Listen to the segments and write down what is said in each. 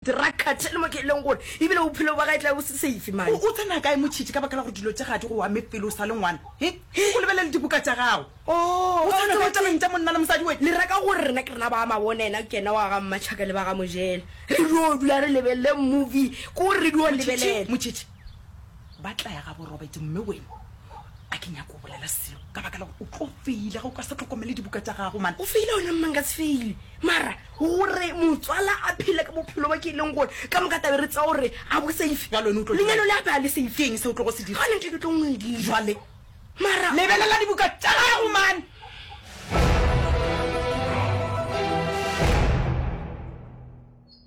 Drug cartel mo ke e leng gore ebile bophelo ba ga e tla bo se safe man. O tsena kae motšhitši ka baka la gore dilo tša ga di go ame pele o sa le ngwana he o lebelele dibuka tša gago oh o tsena kae tabeng tša monna le mosadi we le reka gore rena ke rena ba mabona ena ke ena wa ga mmatšhaka le ba ga mojela re dio dula re lebelele movie ko re dio lebelela motšhitši ba tlaya ga borobet mme wena a ke nyako o bolela seo ka baka la gore o tlo feile ga o ka sa tlhokomele dibuka tsa gago man o feile one mmang ka se feile mara gore motswala a phele ka bophelo ba ke e leng gore ka moka tabe re tsa gore a bo safe lenyalo le ape a le safe ke eng se o tlo go se dira gone ntle ke tlo ngwedile jwale mara lebelela dibuka tsa gago man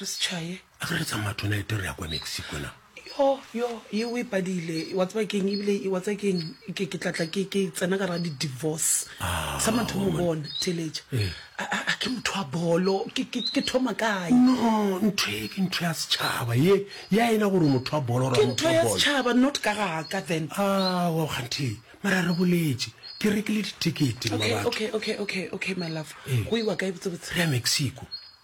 Re se tšhaye. A ke re tsamaya tonight re ya kwa Mexico na? Yo, yo, ye o e padile. Wa tseba keng ebile wa tseba keng ke ke tlatla ke ke tsena ka ra di divorce. Ah, Sa mathomo woman. bona theletša. Eh. A a- a ke motho wa bolo. Ke ke ke thoma kae? No, ntho e ke ntho ya setšhaba ye ya ena gore motho wa bolo Ke ra motho ntho wa ya bolo. setšhaba not ka ga ka then. Awa kganthe mara re boletše ke rekile ditekete mma Okay, batho okay, okay, okay, okay my love. Eh. Go iwa kae botsebotse? re ya Mexico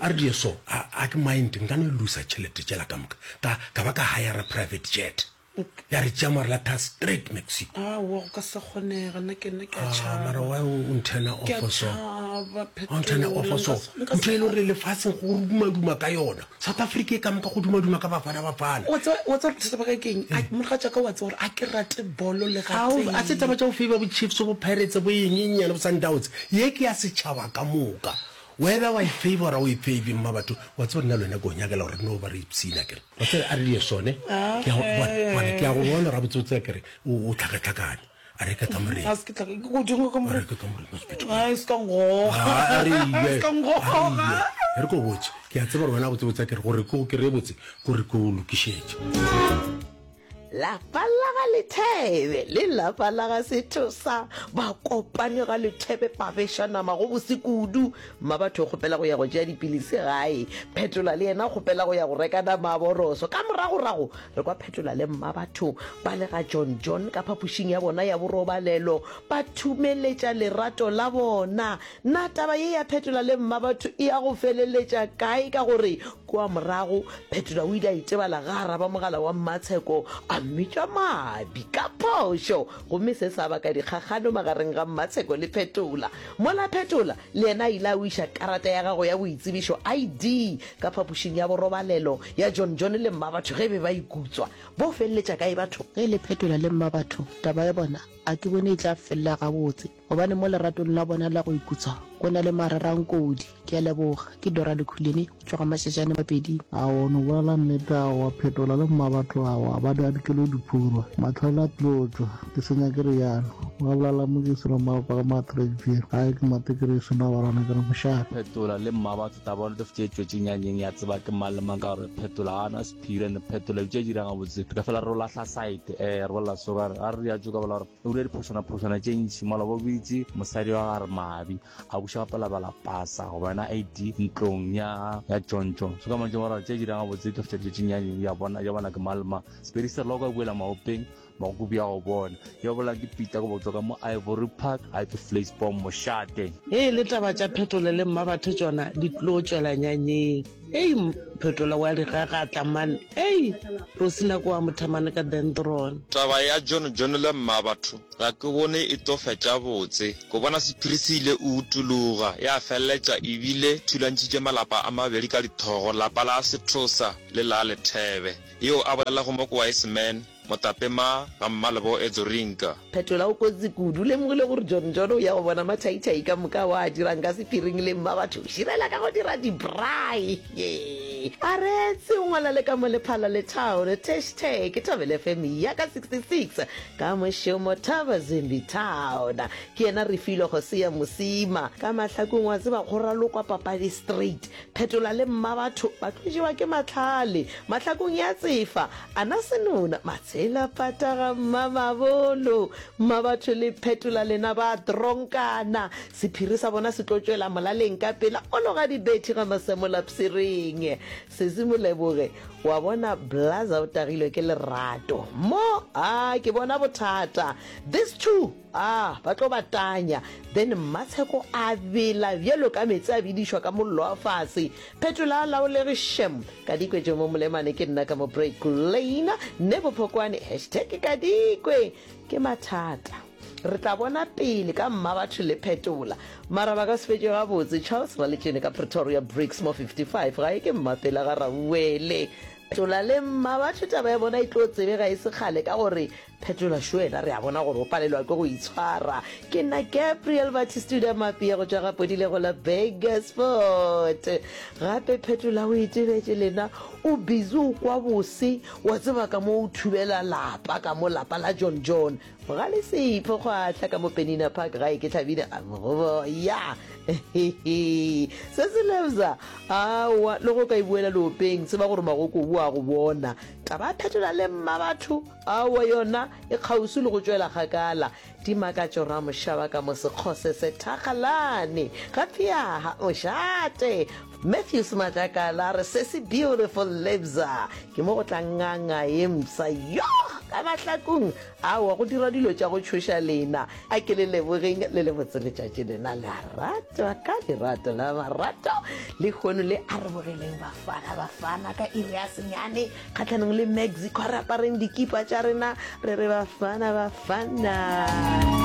a re die so a ke mind nka no lusa tšhelete tšela ka moka ka ba ka hire private jet ya re tšea mare la tha straight mexico ah, wa go ka se kgonega nna ke nna ke ah, tšhabamara wa o nthena ofo so o nthena ofo so ntho e le gore lefatsheng go dumaduma ka yona South Africa e ka moka go dumaduma ka Bafana Bafana. Wa tseba wa tseba bothata ba ka ke eng? A mogatša ka wa tseba gore a ke rate bolo le ga tee. A se taba tša go favor bo Chiefs bo Pirates bo eng eng nyana bo Sundowns. Ye ke ya setšhaba ka moka. Whether wa e favor o e favor mma batho wa tseba nna le wena ke go nyakela gore re no ba re ipshina ke re. Wa tseba a re di ye sone ke ya go bona ke ya go bona gore gabotse botse ke re o tlhakatlhakane. a re ke ka morena a se ke tla ke go dinga ka morena ke ka morena hospital a se ka ngoga a re ile se ka ngoga e re ko botse ke a tseba rona go tsebotsa ke re gore ke go kere botse gore ke o lokišetše lapa la ga lethebe le lapa la ga sethosa ba kopane ga lethebe ba beša nama go bose kudu mma batho kgopela go ya go tšea dipilisi gae phetola le yena kgopela go ya go reka nama a boroso ka moragorago Re kwa phetola le mma batho ba le ga John John ka phapošing ya bona ya borobalelo ba thumeletša lerato la bona. Na taba ye ya phetola le mma batho e ya go feleletša kae? Ka gore kua morago phetola o ile a itebala ga araba mogala wa mmatsheko a mmitša mabi ka phošo, gomme se sa baka dikgakgano magareng ga mmatsheko le phetola. Mola phetola Le yena a ile a wiša karata ya gago ya boitsebišo, ID, ka phapošing ya borobalelo ya John John le Mmabatho ge e be ba ikutswa. Bo feleletša kae batho? Ge le phetola le Mmabatho, taba ya bona a ke bone e tla felela gabotse gobane mo leratong la bona la go ikutswa go na le marerankodi. Ke a leboga. Ke Dora Lukhuleni. Tloga matšatšane mabedi. A o no bolela nnete, a o a phetola le mmabatho, a o a ba di adikelo diphurwa, mahlale a tlilo tšwa, ke se nyake reyalo, wa bolala mo ke seno mma paka ma trek je, gae ke mate ke re seno a barana ke re mošate. Phetola le mmabatho taba o netefetše e tšwetše nyanyeng ya tseba ke mang le mang ka gore phetola ga ana sephiri, and phetola bitša e dira gabotse, re ka fela re o lahla side, eh, re bolela so, ra re, a re re ya tšo ka bola gore. O dira diphošwanaphošwana tše ntši mola bo bitse mosadi wa ga Remabi a buša gape labala pasa go bona ID ntlong ya ya tšontšo. Se ka mantšo moraro tše dirang gabotse di feta tšetšeng ya ya bona ya bona ke malma. Sepedi se rela o ka buela maopeng makuku bja go bona. Yo bola ke Peter go botswa ka mo Ivory Park a ke Fleisbom mošate. Ge e le taba tša phetole le Mmabatho tšona di tlo tšwela nyanyeng. Ei, phetola wa digagatla man. Ei, go se nako wa mothamane ka dendron. Taba ya John John le Mmabatho ga ke bone e tlo fetša botse. Ko bona sephiri se ile o utologa, ya feleletša e bile thulantšhitše malapa a mabedi ka dithogo, lapa la Sethosa le la Lethebe. Yeo a bolelago mo ko Wiseman. Motapema ga Mmalebo e Dzorinka. Phetola o kotsi kudu, o lemogile gore John John o ya go bona mathaithai ka moka wa a dirang ka sephiring le mmabatho širela ka go dira di braai hee a reetse o ngwala le ka mo lephala le town tashtag thabele fm ya ka 66 ka mošomo thaba zimbi town ke yena refilwe go se ya mosima ka mahlakong wa tseba go ralokwa papadi straight Phetola le Mmabatho ba tlo jewa ke mahlale mahlakong ya tsefa, a na senona matshela pata ga Mmamabolo. Mmabatho le Phetola lena ba tronkana, sephiri sa bona se tlo tšwela molaleng ka pela o loga dibethi ga Masemola psireng. Sesi Moleboge, wa bona Blaza o tagilwe ke lerato mo, a ke bona bothata, this two. Aa, ba tlo ba tanya. Then Mmatsheko a bela bjalo ka meetse a bedišwa ka mollo wa fase. Phetola laolege shem. Kadikwe Jomo Molemane ke nna ka mo break lane. Nebo Phokwane hashtag Kadikwe ke mathata. Re tla bona pele ka Mmabatho le Phetola. Mara ba ka se fetše gabotse. Charles Raletšene ka Pretoria Bricks mo 55 gae ke Mmapela ga Rauwele. Phetola le Mmabatho taba ya bona e tlo tsebega e se kgale ka gore Phetola Shuena re a bona gore o palelwa ke go itshwara. Ke nna Gabriel Batistuda Mapia go tšwa ga Podilego la Burger Sport. Gape Phetola o itebetše lena o busy o kwa bose wa tseba ka mo o thubela lapa ka mo lapa la John John. Ga le sepho kgwahla ka mo Penina Park gae ke Tlhabina a mo go boya. Se se lebza awa le go ka ibuela lopeng tseba gore magoko o a go bona. Taba ya Phetola le mma batho Aowa yona e kgauswi le go tšwela kgakala. Dimakatšo ra mošaba ka mo sekgose se thakgalane. Ga pheaha o šate. Matthews Matlakala a re se se beautiful lebza. Ke mo go tla nganga ye mfsa yoh ka mahlakung. Aowa go dirwa dilo tša go tšhoša lena. A ke le lebogeng le le botse letšatši lena la ratwa ka lerato la marato. Lehono le arobogeleng bafana bafana ka iri ya senyane. kgatlhanong le mexico re apareng dikipa tša rena re re bafana bafana